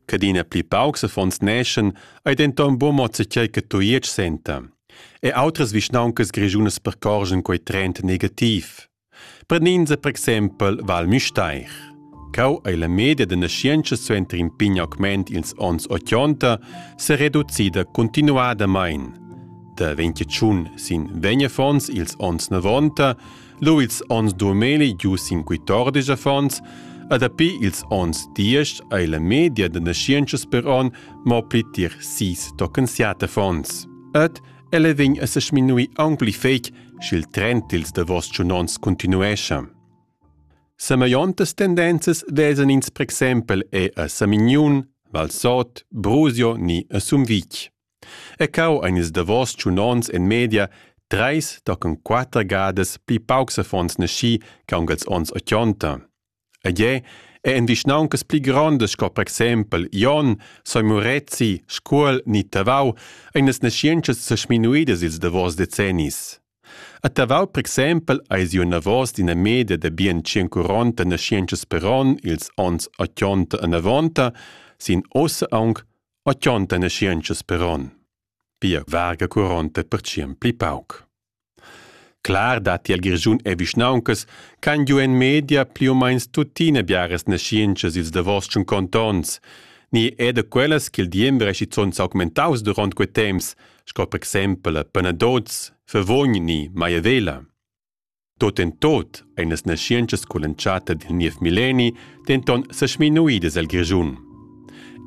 Cadina pli paucs affons neschan ei denton buca mo zatgei che Tujetsch senta. E outras vischnauncas grischunas percorgen quei trend negativ. Prenenza per exempel Val Müstair. Cau ei la media da naschientscha suenter in pign augment ils onns 80 se reducida continuadamein. Da 21 sin vegn affons ils onns 90 Luits ons domeli giu cinquetordisch affons, e dapi ils ons diesch ei la media da naschientschas per on mo pli tier sis tochen siat affons. Ed ella vegn a se sminui aunc pli fetg, sch'il trend dils davos tschunons continuescha. Semellontas tendenzas vesan ins per exempel e a Samignun, Valsot, Brusio ni a Sumvitg. E cau ein ils davos tschun onns en media treis tochen quater gadas pli paucs affons naschi che aunc els onns ochonta. Ed jeu è en vischnauncas pli grondas sco per exempel Jon, Soi Murezi, Scuol ni Tavau ein las naschientschas sesminuidas ils davos decennis. A Tavau, per exempel, eis iu navos d'ina media da bien 140 naschientschas per onn ils onns 80 e 90, sin ossa aunc O chonta naschientschas per on, pia varga curonta per tschien pli pauc. Clar datti al Grischun e vischnauncas ch'han giu en media pli u meins tuttina biaras naschientschas ils davos tschun contonts, ni è da quellas ch'il diember è schizunt s'augmentaus duront quei temps, sco per exempel a Panadoz, Favogn ni Maiavela. Tot en tot ein las naschientschas cull'entschatta dil niev milleni denton sesminuidas el Grischun.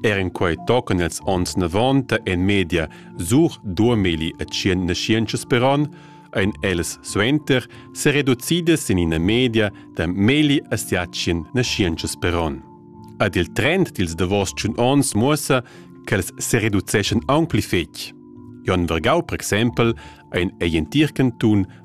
Er in quei tocan els onns 90 en media sur 2000 naschientschas per on, ein ellas suenter sereducidas in ina media da meli asiatien naschientschas per on. Ad il trend dils davos tschun onns muossa ch'els sereduceschan aunc pli fetg. Jon Vergau, per exempel, ein ei in tir cantun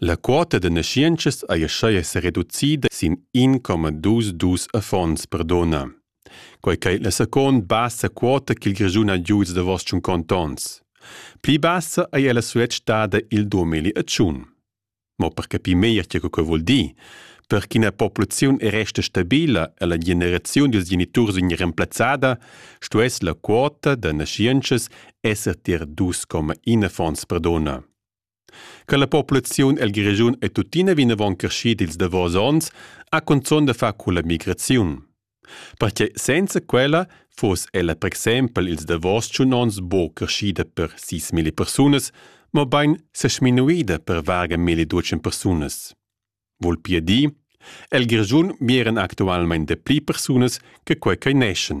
La quota da naschientschas ei aschia sereducida sin in coma dus dus affons per dunna. Quei ch'ei la second bassa quota ch'il Grischun ha giu ils davos tschun contons. Pli bassa ei ella suet stada il 2001. Mo per capir meglier tge che vul dir, per ch'ina populaziun resta stabila e la generaziun dils geniturs vegn remplazzada, stuess la quota da naschientschas esser tier dus coma in affons per dunna. Che la populaziun el Grischun è tuttina vinavon creschida ils davos onns, ha cunzun da far culla migraziun. Pertgei senza quella fuss ella per exempel ils davos tschun onns buca creschida per sis milli persunas, mobein sesminuida per varga milli ducen persunas. Vul pia dir, el Grischun miran actualmein dapli persunas che quei ch'ei neschen.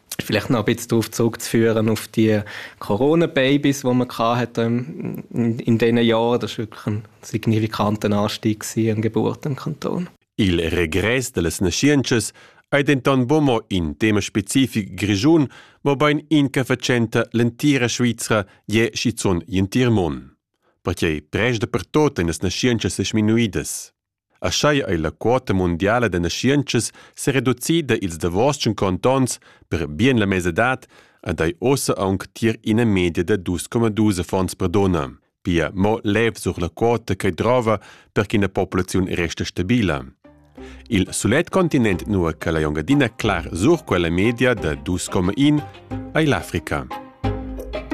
vielleicht noch ein bisschen darauf zurückzuführen, auf die Corona-Babys, die man hatte in, in diesen Jahren. Das war wirklich ein signifikanter Anstieg an Geburt im Kanton. Il regress de las naschientschas ei denton bumo in tema specific grischun, mobein in che facenta l'entira Svizra je schizun gl'entir mon. Perquei prest dapertot ein las naschientschas seminuidas. Aschia ei la quota mundiala da naschientschas sereducida ils davos tschunconta onns per bien la mesadad ed ei ussa aunc tier ina media da dus coma dus affons per dunna. Pia mo lev sur la quota che drova per ch'ina populaziun resta stabila. Il sulet continent nua che la Engiadina clar sur quella media da 2,1 ei l'Africa.